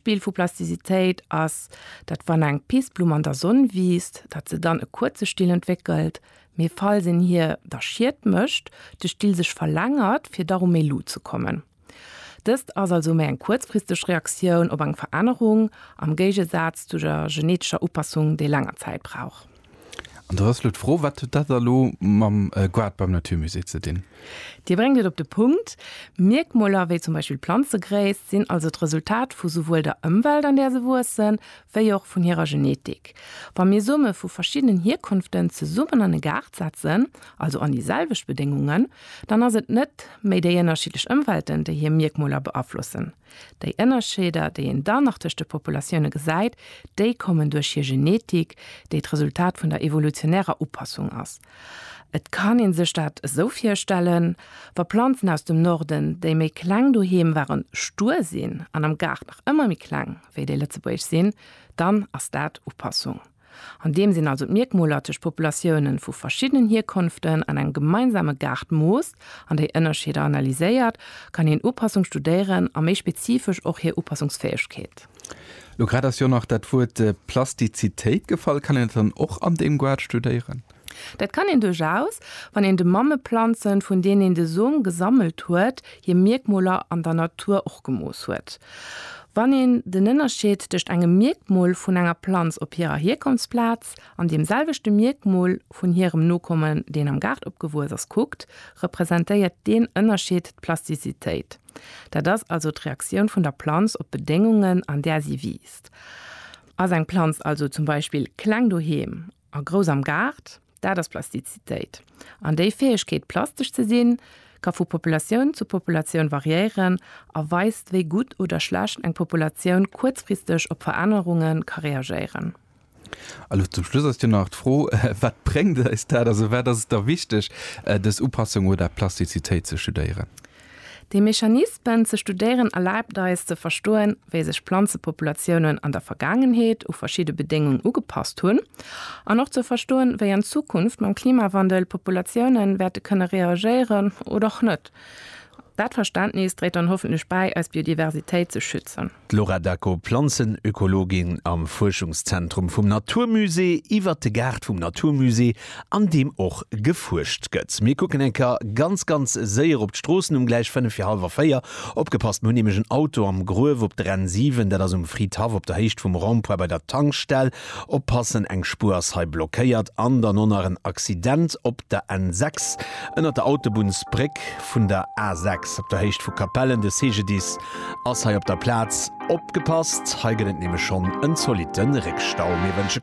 D'Bild vu Plasticitéit ass, datt wann eng Pissblumm an der Sonn wiisst, datt se dann e kuerze Still entwéckelt, mee falls een hir da Schied mécht, de Still sech verlängert fir da ru méi Luucht ze kommen. Dëst ass also méi eng kuerzfristeg Reaktioun op eng Verännerung, am Géigesaz zu der genetescher Upassung, déi länger Zäit brauch. An da ass elo d'Fro, Wat huet dat da lo mam Goût beim Naturmusée ze dinn? Dir bréngt et op de Punkt. Mierkmoler wéi zum Beispill d'Planzegréisst sinn also d'Resultat vu souwuel der Ëmwelt, an där se wuessen, wéi och vun hirer Genetik. Wa mir Some vu verschiddenen Hierkonften zesummen an e Gaart setzen, also an déi selwecht Bedéngungen, dann ass et net méi déi ënnerschiddlech Ëmwelten, déi hir Mierkmoler beaflossen, Déi Ënnerscheeder, déi een dann nach tëscht de Populatioune gesäit, déi kommen duerch hir Genetik, déi d'Resultat vun der evolutionärer Upassung ass. Et kann ee sech dat esou virstellen, Wa Planzen aus dem Norden, déi méi kleng doheem waren, stuer sinn an am Gaart nach ëmmer méi kleng wéi déi lëtzebuergesch sinn, dann ass dat Upassung. An deem Sinn also d'Mierkmoler tëscht Populatiounen vu verschiddenen Hierkonften an engem gemeinsame Gaart moost an déi Ënnerscheeder analyséiert, kann een Upassung studéieren a méi spezifesch och hir Upassungsfäegkeet. Lo grad ass jo nach dat Wuert Plastizitéit gefall. Kann een dat dann och an deem Guard studéieren? Dat kann een duerchaus, wann een de Mammeplanzen, vun deenen een de Som gesammelt huet, hir Mierkmoler an der Natur och gemooss huet. Wann een den Ënnerscheed tëscht engem Mierkmol vun enger Planz op hirer Hierkonftsplaz an deem selwechte Mierkmol vun hirem Nokommen, deen am Gaart opgewuess ass, kuckt, representéiert deen Ënnerscheed d'Plastizitéit. Dat ass also d'Reaktioun vun der Planz op d'Bedéngungen, an där si wiisst. Ass eng Planz also zum Beispill kleng doheem A grouss am Gaart, dat ass Plastizitéit. An déi Fäegkeet, plastesch ze sinn, ka vu Populatioun zu Populatioun variéieren a weist, wéi gutt oder schlecht eng Populatioun kuerzfristeg op Verännerunge ka reagéieren. Elo zum Schluss ass jo nach d'Fro, Wat bréngt eis dat? Also wat ass et da wichteg, dës Upassung oder Plastizitéit ze studéieren? Déi Mechanismen ze studéieren erlaabt eis ze verstoen, wéi sech Planzepopulatiounen an der Vergaangenheet u verschidde Bedéngung ugepasst hunn an och ze verstoen, wéi an Zukunft mam Klimawandel d'Populatiounen wäerte kënne reagéieren oder och net. Dat Verständnis dréit dann hoffentlech bäi, eis Biodiversitéit ze schützen. D'Laura Dacko, Planzenökologin am Fuerschungszentrum vum Naturmusée, iwwert de Gaart vum Naturmusée, an deem och gefuerscht gëtt. Mir kucken eng Kéier ganz, ganz séier op d'Stroossen um gläich fënnef fir hallwer véier. Opgepasst, mir hunn nämlech en Auto am Gruef op der N 7. Dat ass um Fridhaff op der Héicht vum Rond-point bei der Tankstell. Oppassen, eng Spuer ass hei blockéiert. An dann och nach en Accident op der N 6 ënnert der Autobunnsbréck vun der A 6 op der Héicht vu Capellen. De CGDIS Ass hei op der Platz. Opgepasst, hei gëtt et nämlech schonn en zolitte Réckstau. Mir wënsche.